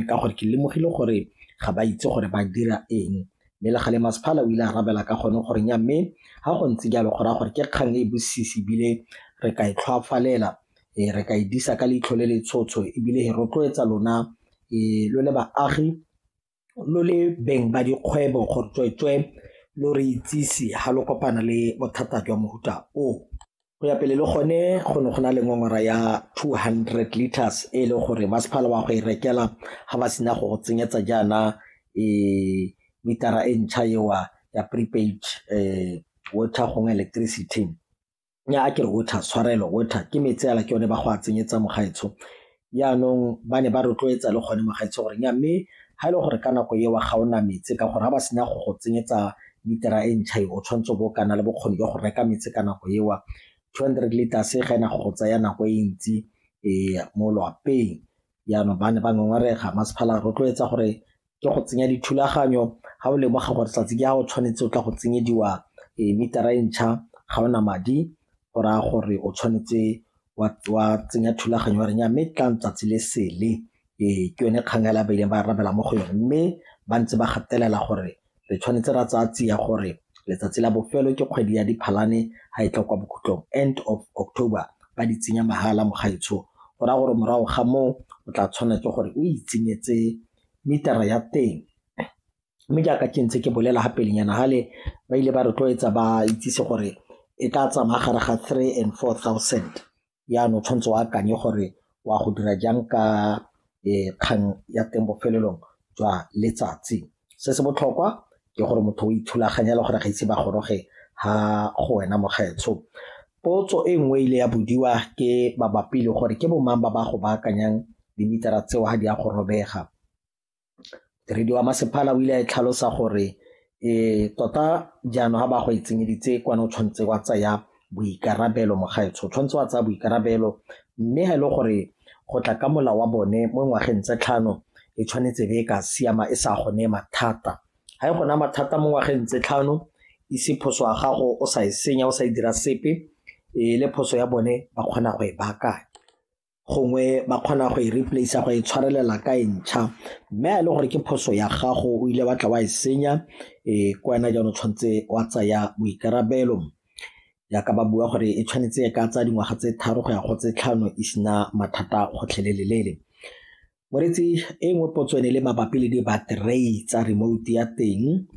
ka gore ke lemogile gore ga ba itse gore ba dira eng mme le gale masephala o ile a rabela ka gone gore nya mme ga go ntse jalo go raya gore ke kgang e bosisi ebile re ka e tlhwafalela um re ka e disa ka leitlho le le tshotsho ebile e rotloetsa lona um lo le baagi lo le beng ba dikgwebo gore tsweetswe lo re itsise ga lo kopana le bothata jwa mohuta o Go ya pele le gone go ne go na le ngongora ya 200 litres e le gore masepala wa go e rekela ga ba sena go go tsenyetsa jaana e mitara e ntšha ewa ya prepaid um water gongwe electricity nya a ke re water tshwarelo water ke metsi ala ke yone ba go a tsenyetsa mogaetsho Yaanong ba ne ba rotloetsa le gone mogaetsho gore nya mme ga e le gore ka nako eo ga o na metse ka gore ga ba sena go go tsenyetsa litera e ntšha e o tshwanetse bo kana le bokgoni jwa go reka metse ka nako eo two hundred liters e ga ena go go tsaya nako e ntsi um mo loapeng yaanong ba ne ba ngongorega masephala rotloetsa gore ke go tsenya dithulaganyo ga o lemoga gore tsatsi ke ya o tshwanetse o tla go tsenyediwa e metara e ntšha ga ona madi go raya gore o tshwanetse wa tsenya thulaganyo wa reng ya mme tlang tsatsi le sele ee ke yone kgang ya labeleng ba arabela mo go yone mme ba ntse ba gatelela gore re tshwanetse ra tsaya tsia gore letsatsi la bofelo ke kgwedi ya diphalane ga e tla kwa bokhutlong end of october ba di tsenya mahala mogaetsho go raya gore morago ga moo o tla tshwanela ke gore o itsenyetse meter-a ya teng. Mme jaaka ke ntse ke bolela ga pelenyana fale, ba ile ba rotloetsa ba itsise gore e ka tsamaya gare ga three and four thousand, jaanong o tshwanetse o akanye gore o a go dira jang ka kgang ya teng bofelelong jwa letsatsi. Se se botlhokwa ke gore motho o ithulaganya le gore ga ise ba goroge ha go wena mokgetsho potso e nngwe ile ya bodiwa ke mabapi le gore ke bomang ba ba go baakanyang dimitara tseo ga di a go robega modiredi wa masepala o ile a e tlhalosa gore e tota jaanong ga ba go e tsenyeditse kwane o tshwanetse wa tsaya boikarabelo mogaetsho o tshwanetse wa tsaya boikarabelo mme ga e le gore go tla ka mola wa bone mo ngwageng tse tlhano e tshwanetse be e ka siama e sa gone mathata ga e gona mathata mo ngwageng tse tlhano ise phoso ya gago o sa e senya o sa e dira sepe e le phoso ya bone ba kgona go e baakanya gongwe ba kgona go e replace go e tshwarelela ka e ntšha mme a e le gore ke phoso ya gago o ile batla wa e senya um ke wena jaano tshwanetse wa tsaya boikarabelo jaaka ba bua gore e tshwanetse e ka tsaya dingwaga tse tharo go ya go tse tlhano e sena mathata gotlhelelelele moretsi e nngwe potso ene le mabapi le di-battery tsa remote ya teng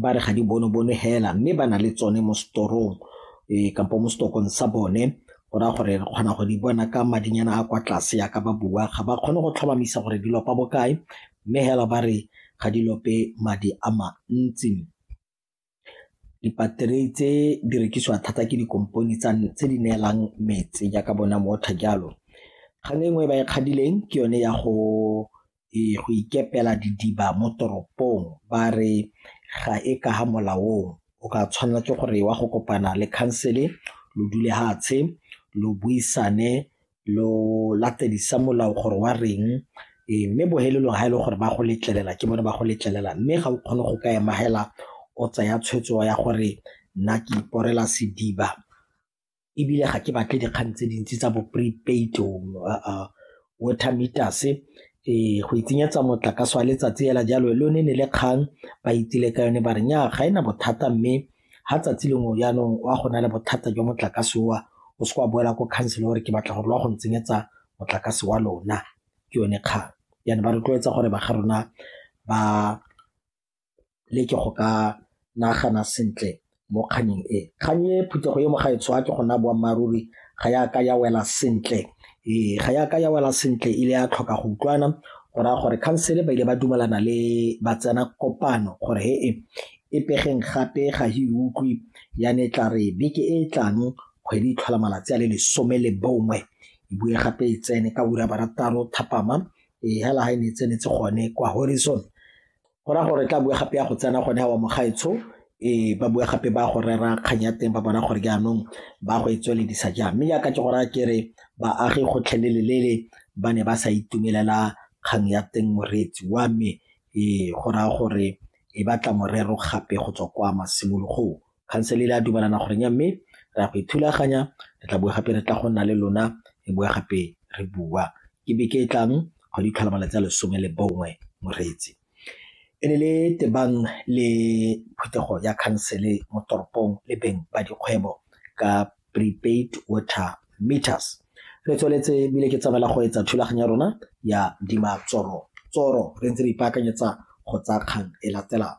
ba re ga di bone bone hela mme ba na le tsone mo setorong um kampo mo setokong sa bone go raya gore re kgona go di bona ka madinyana a kwa tlase ya ka ba bua ga ba kgone go tlhomamisa gore di lopa bokae mme hela ba re ga di lope madi a mantsi dipaterei tse di rekisiwa thata ke dikompone tse di neelang metsi jaaka bona motho jalo kgang e nngwe e ba e kgadileng ke yone ya go ee go ikepela didiba mo toropong ba re ga e ka ga molaong o ka tshwanela ke gore wa go kopana le khansele lo dule hatshe lo buisane lo latedisa molao gore wa reng ee mme bohelelong ga e le gore ba go letlelela ke bone ba go letlelela mme ga o kgone go ka emagela o tsaya tshwetso ya gore nna ke iporela sediba ebile ga ke batle dikgang tse dintsi tsa bo prepaid water meters ee go itsenyetsa motlakase wa letsatsi fela jalo le one ne le kgang ba itsile ka yone ba re nya ga ena bothata mme ga tsatsi lengwe jaanong wa go na le bothata jwa motlakase wa o se wa boela ko council gore ke batla gore lwa go ntsenyetsa motlakase wa lona ke yone kgang yana ba rotloetsa gore ba ga rona ba le ke go ka nagana sentle mo kgannyeng e kgang e phuthego e mo ga e tswa ke go naya boammaaruri ga ya ka ya wela sentle ee ga ya ka ya wela sentle ile ya tlhoka go utlwana go raya gore khansele ba ile ba dumelana le ba tsena kopano gore he e e pegeng gape ga e utlwe ya ne tla re beke e e tlang kgwedi tlhola malatsi a le lesome le bongwe e bue gape e tsene ka ura barataro thapama e hela ga e ne e tsenetse gone kwa horizon Go raya gore tla boe gape ya go tsena gone wa mogaetsho e ba bua gape ba go rera kgang ya teng ba bona gore jaanong ba go e tsweledisa jang mme yaka ke go raya ke re baagi gotlhelelelele ba ne ba sa itumelela kgang ya teng moreetsi wa me e go raya gore e batla morero gape go tswa kwa masimologong khansele le a dumalana gore nya mme re ya go ithulaganya re tla bua gape re tla go nna le lona re bua gape re bua ke beke e tlang go di tlhola malatsi a lesome le bongwe moreetsi e ne le tebang le phuthego ya khansele mo toropong le beng ba dikgwebo ka prepaid water meters re tsweletse ebile ke tsamaela go etsa thulaganyo ya rona ya dima tsoro tsoro re ntse re ipaakanyetsa go tsaya kgang e latelang